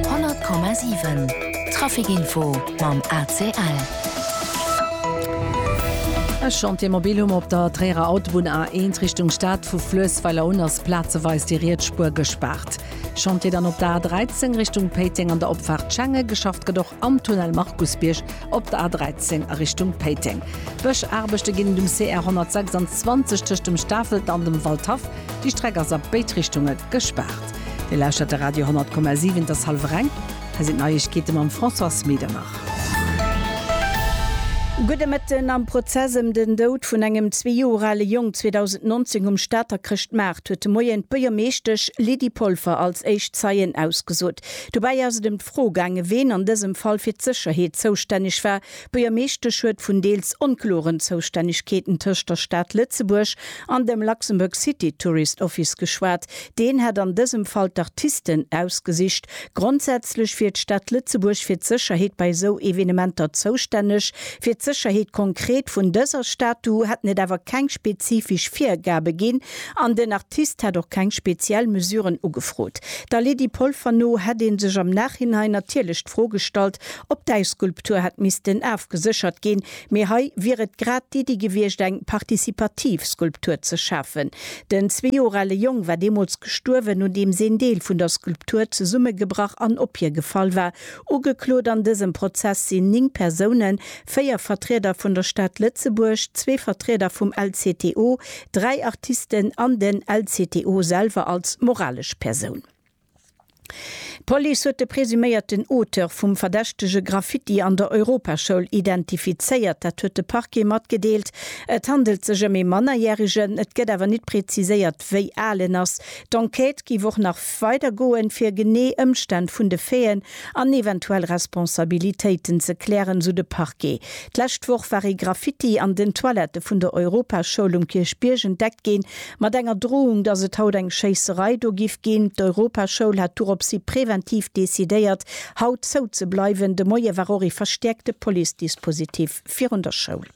100,7 Trafic Info mam ACL. E Chantier mobil hu mer op der Tréierer Autobunn A1 Richtung Stad. Vu Fluessweiler un ass plazeweis déi riets Spuer gespaart. Chantier dann op der A13 Richtung Péiteng an der Opfaart Schenge. Geschafft gëtt och am Tunnel Markusbierg op der A13 a Richtung Péiteng. Bëschaarbechte ginn et um CR 126 tëscht dem Stafelt an dem Waldhaff. Déi Streck ass a béid Richtunge gespaart. Dir lauschtert de Radio 10,7, et ass hallwer eng, hei sinn d'Neiegkeete mam Françoise Medernach. Gudde Mëtten. Am Prozess ëm den Doud vun engem zwee Joer ale Jong 2019 um Stater Chrëschtmaart huet de Moien d'Buergermeeschtesch Lydie Polfer als éischt Zeien ausgesot. Dobäi ass et ëm d'Fro gaangen, ween an dësem Fall fir d'Sécherheet zoustänneg war, D'Buergermeeschtesch huet vun deels onkloren Zoustännegkeeten tëscht der Stad Lëtzebuerg an dem Luxembourg City Tourist Office geschwat. Deen hätt an dësem Fall d'Artisten ausgesicht. Grondsätzlech wier d'Stad Lëtzebuerg fir d'Sécherheet bei esou Evenementer zoustänneg. Fir d'Sécherheet konkret vun dëser Statue hätten et awer keng spezifesch Virgabe ginn an den Artist hätt och keng speziell Mesuren ugefrot. Der Lydie Polfer no hätt ee sech am Nachhinein natierlech d'Fro gestallt, Op däi Skulptur hätt missten afgeséchert ginn, mee hei wier et grad d'Iddi gewiescht, eng participativ Skulptur ze schafen. Den zwee Joer ale Jong war deemools gestuerwen, nodeems een Deel vun der Skulptur zesummegebrach an op hie gefall war. Ugeklot an dësem Prozess sinn ning Persounen, véier Vertrieder vun der Stad Lëtzebuerg, zwee Vertrieder vum LCTO, dräi Artisten an den LCTO selwer als moralesch Persoun. D'Police huet de presuméierten Auteur vum verdächtege Graffiti an der Europaschoul identifizéiert. Dat huet de Parquet matgedeelt. Et handelt sech ëm ee Mannerjäregen, et gëtt awer nit preziséiert, wéi al en ass. D'Enquête géif och nach weider goen, fir genee Ëmstänn vun de Faiten an eventuell Responsabilitéiten ze klären, sou de Parquet. D'lescht Woch war ee Graffiti an den Toilette vun der Europaschoul um Kierchbierg entdeckt ginn. Mat enger Drohung, dass et haut eng Schéisserei do giff ginn. D'Europaschoul hat doropshi präventiv decidéiert, haut zou ze bleiwen. De Moie war och ee verstäerkte Police-Dispositif virun der Schoul.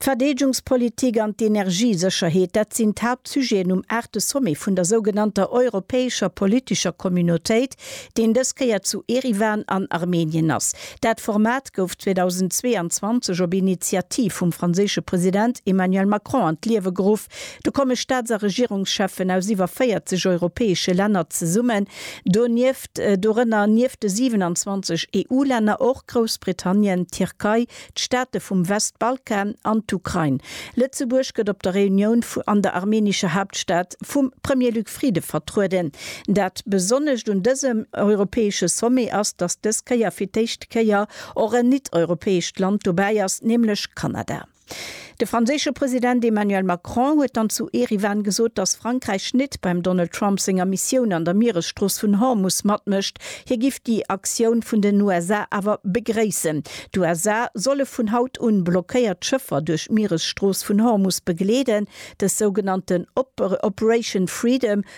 D'Verdeedgungspolitik an d'Energiesécherheet, dat sinn d'Haaptsujeten um aachte Sommet vun der sougenannter europäescher politescher Communautéit, deen dës Kéier zu Eriwan an Armenien ass. Dat Format gouf 2022 op Initiativ vum franséische President Emmanuel Macron an d'Liewe geruff. Do komme Staats a Regierungscheffen aus iwwer 40 europäesche Länner zesummen, donieft, dorënner nieft de 27 EU-Länner och Groussbritannien, d'Tierkei, d'Staate vum Westbalkan an d'Ukrain. Lëtzebuerg gëtt op der Reunioun an der armenischer Hauptstadt vum Premier Luc Frieden vertrueden. Dat Besonnescht un dësem europäesche Sommet ass, datt dës Kéier fir d'éischt Kéier och en nit-europäescht Land dobäi ass, nämlech Kanada. De franséische President Emmanuel Macron huet dann zu Eriwan gesot, datt Frankräich nit beim Donald Trump senger Missioun an der Mieresstrooss vun Hormus matmécht. Hie giff déi Aktioun vun den USA awer begréissen. D'USA solle vun haut un blockéiert Schëffer duerch d'Mieresstrooss vun Hormus begleeden. Dës sougenannten Operation Freedom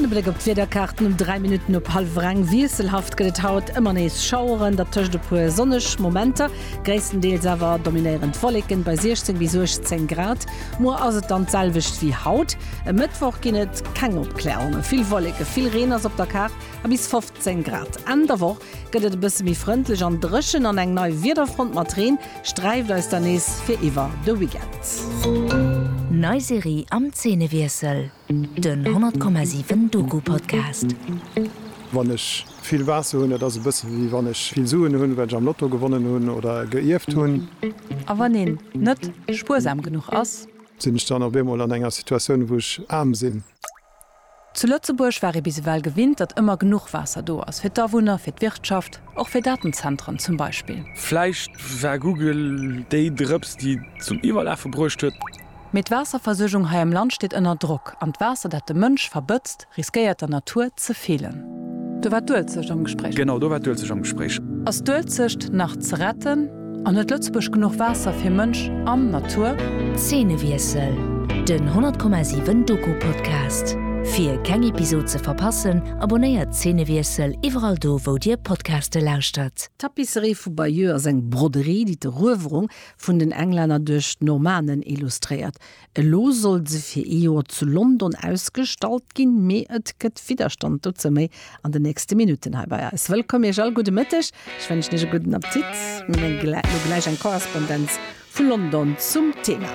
An e Bléck op d'Wiederkaarten um 3 Minutten op hallef reng. Wiesselhaft gëtt et haut, ëmmer nees Schaueren, dertëscht e puer sonneg Momenter. Gréisstendeels awer dominéierend Wolleken bei 16 bis 18 Grad. Muer ass et dann d'selwecht wéi haut. E Mëttwoch ginn et keng Opklärungen, vill Wolleken, vill Reen ass op der Kaart a bis 15. 10 Grad. Enn der Woch gëtt et e bësse méi frëndlech an dréchen an eng nei Wiederfront mat Reen sträift eis dann nees fir iwwer de Weekend. Nei Serie am Zeenewiessel, den 10,7 Doku-Podcast. Wann ech vill Waasser hunn, dat ass e bësse wéi wann ech vill Suen hunn, well ech am Lotto gewonnen hunn oder e geierft hunn. A wann een net spuersam genuch ass? Sinn ech dann op eemol an enger Situatioun, wou ech aarm sinn? Zu Lëtzebuerg war ee bis ewell gewinnt, datt ëmmer genuch Waasser do ass, fir d'Awunner, fir d'Wirtschaft, och fir Datenzentren zum Beispill. Vläicht war Google déi Drëps, déi et zum Iwwerlafe bruecht huet. Mee d'Waasserversuergung hei am Land steet ënner Drock, an d'Waasser, dat de Mënsch verbëtzt, riskéiert der Natur ze feelen. Do war d'Uelzecht am Gespréich. Genau, do war d'Uelzecht am Gespréich. Ass d'Uelzecht nach ze retten? An huet Lëtzebuerg genuch Waasser fir Mënsch an Natur? Zeenewiessel, Den 100,7 Doku Podcast. Fir keng Episod ze verpassen, abonnéiert Zeenewiessel iwwerall do wou dir Podcaste lauschtert. D'Tapisserie vu Bayeux ass eng Broderie, déi d'Eruewerung vun den Englänner duerch d'Normannen illustréiert. Elo soll se fir ee Joer zu London ausgestallt ginn, mee et gëtt Widderstand. Dozou méi an den nächste Minutten hei bei eis. Wëllkomm Iech all, gudde Mëtteg, ech wënschen Iech e gudden Appetit. Mir hunn elo gläich eng Korrespondenz vu London zum Thema.